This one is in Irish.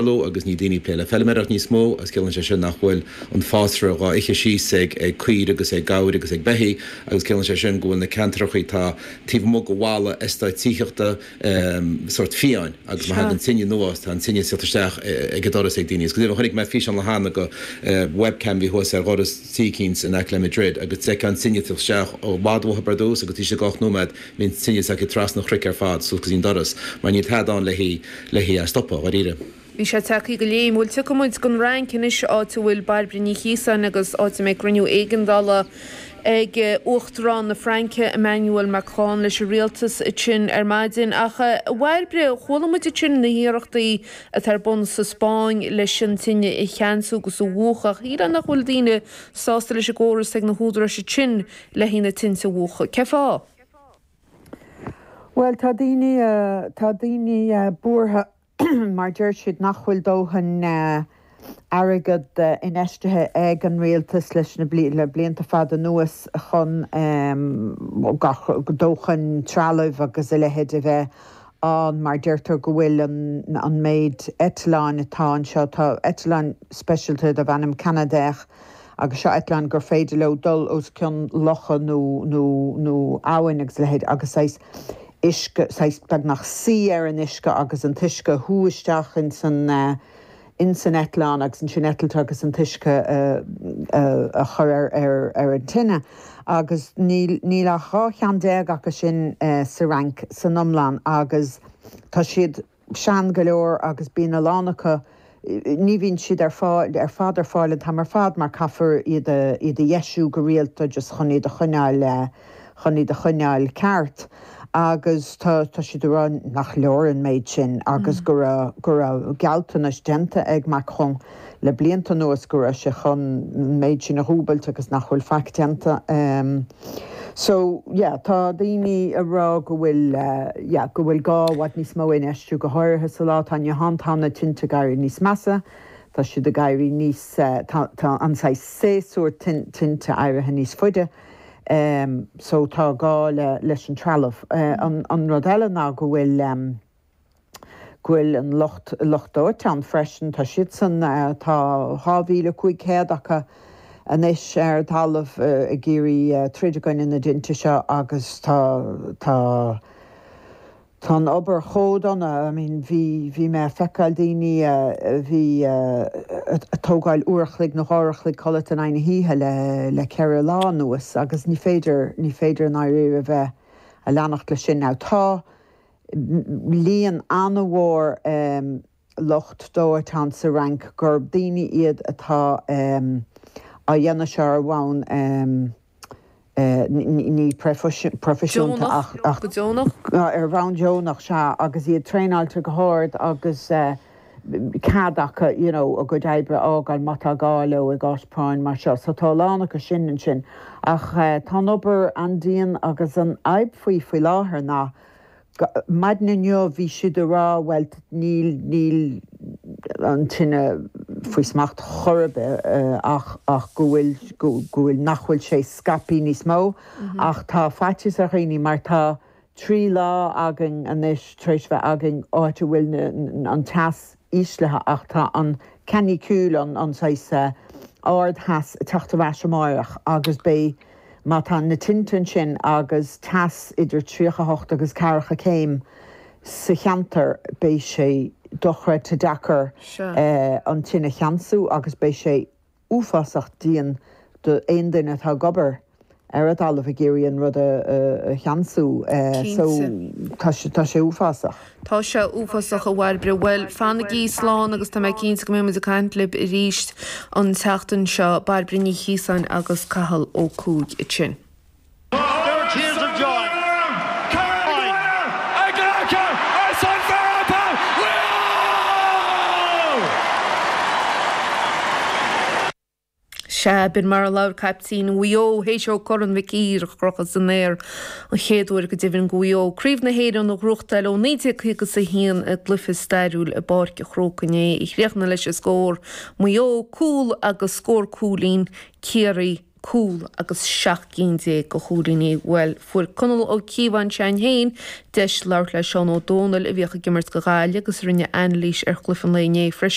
Lú agus níl daoine ag plé le feilméaracht níos mó agus ciallaíonn sé sin nach bhfuil an fásra dhá ithe síos ag ag caoirigh agus ag gabhair agus ag beithígh agus ciallaíonn sé sin go bhfuil na ceantracha atá taobh amuigh go bhailte is eastáit tithíochta sórt fiáin agus má thagann tine anuas tá an tine ag tíocht isteach ag an doras ag daoine agus go deimhin chonaic mé físeán le hAnna, webcam a bhí thuas ar dhoras tí eicínt in aice le Madrid agus d'fheicfeá an tine ag tíocht isteach i bhfad uathu i dtús agus taobh istigh go ocht nóiméad bhí an tine tagtha trasna an chnoic ar fad suas go dtí an doras, mar níl tada ann lena stopadh, dháiríre. Bhí sé tagtha go léim. Bhuel, tiocfaidh muid gon Fhrainc anois, áit a bhfuil Bairbre Ní Chíosáin agus áit a mbeidh cruinniú éigeandála ag Uachtarán na Fraince, Emmanuel Macron, leis an rialtas ansin ar maidin. Ach, a Bhairbre, chuala muid ansin na hiarrachtaí atá ar bun sa Spáinn leis an tine a cheansú agus a mhúchadh. Ach is cosúil nach bhfuil daoine sásta leis an gcóras atá ag na húdaráis ansin. leis na tinte a mhúchadh. Cé fáth? Bhuel, tá daoine, tá daoine buartha mar deir siad nach bhfuil dóthain airgead infheistithe ag an rialtas leis na, le blianta fada anuas chun gach, dóthain trealaimh agus a leithéid a bheith ann mar deirtear go bhfuil an, an méid eitleáin atá anseo, tá eitleáin speisialta darb ainm Canadair agus seo eitleáin gur féidir leo dul os cionn locha nó, nó, nó abhainn agus a leithéid agus saghas uisce, saghas, beagnach suí ar an uisce agus an t-uisce a shú isteach in san eh, in san eitleán agus ansin eitilt agus an t-uisce a, a, a chur ar, ar, ar an tine agus níl, níl ach dhá cheann déag acu sin eh, sa Fhrainc san iomlán agus tá siad, tá. sean go leor agus bíonn a lán acu, ní bhíonn siad ar fáil, ar fad ar fáil an t-am ar fad mar caithfear iad a, iad a dheisiú go rialta just chun iad a choinneáil, chun iad a choinneáil ceart agus tá, tá siad ag rá nach leor an méid sin agus go raibh, go raibh gealltanais déanta ag Macron. le blianta anuas go raibh sé chun an méid sin a dhúbailt agus nach bhfuil faic déanta. So, yeah, tá daoine ag rá go bhfuil, yeah, go bhfuil gá le i bhfad níos mó infheistiú, go háirithe sa lá atá inniu ann. Tá na tinte ag éirí níos measa, tá siad ag éirí níos, tá, tá an saghas séasúr tinte éirithe níos faide. So, tá gá le, leis an trealamh. An, an rud eile ná go bhfuil. go bhfuil an lucht, lucht dóiteáin freisin, tá siadsan, tá 2,500 acu anois ar an talamh ag iarraidh troid i gcoinne na dtinte seo agus tá, tá, tá an obair chomh dona, I mean, bhí, bhí mé a' feiceáil daoine a bhí a' tógáil uair a chloig nó dhá uair a chloig codlata in aghaidh na hoíche le, le ceithre lá anuas agus ní féidir, ní féidir i ndáiríre bheith a' leanacht leis sin. Now tá. líon an-mhór lucht dóiteáin sa Fhrainc, gurb daoine iad atá á dhéanamh seo ar bhonn ní proifisiúnta ach ar bhonn deonach, sea, agus iad traenáilte go hard agus cead acu you know a gcuid oibre a fhágáil má tá gá leo i gcás práinn mar seo. So tá a lán acu sin ansin ach tá an obair an-dian agus an fhadhb faoi faoi láthair ná, Maidin inniu bhí siad ag rá, bhuel, níl, níl an tine faoi smacht chor ar bith ach, ach go bhfuil, go bhfuil, nach bhfuil sé scaipthe níos mó. Ach tá faitíos ar dhaoine mar tá trí lá againn anois tar éis bheith againn áit a bhfuil na, an teas, íslithe ach tá an canicule, an saghas ard theas ag teacht ar ais amáireach agus beidh, má tá na tinte ansin agus teas idir tríocha hocht agus ceathracha céim sa cheantar, beidh sé dochreidte deacair an tine a cheansú agus beidh sé uafásach dian d'aon duine atá ag obair ar an dtalamh ag iarraidh an rud a cheansú so Cinnte. tá sé uafásach. Tá sé uafásach, a Bhairbre. Bhuel, fanaigí slán agus tá mé cinnte go mbeidh muid ag caint libh arís an tseachtain seo. Bairbre Ní Chíosáin agus Cathal Ó Cuaig sin. Sea, b'in mar a labhair caiptín Mhaigh Eo théis dó Corn Mhic Uidhir a chrochadh san aer an chéad uair go deimhin do Mhaigh Eo, Craobh na hÉireann a ghnóthachtáil ó 1951 i gcluiche stairiúil i bPáirc a' Chrócaigh inné a chríochnaigh leis an scór, Maigh Eo, cúl, agus scór cúilín, Ciarraí. cúl agus seacht gcinn déag de chúilíní. Bhuel, fuair Conall Ó Cíobháin se'ainn féin deis labhairt le Seán Ó Domhnaill a bhíodh ag imirt do Ghaillimh agus a rinne anailís ar chluiche an lae inné freisin.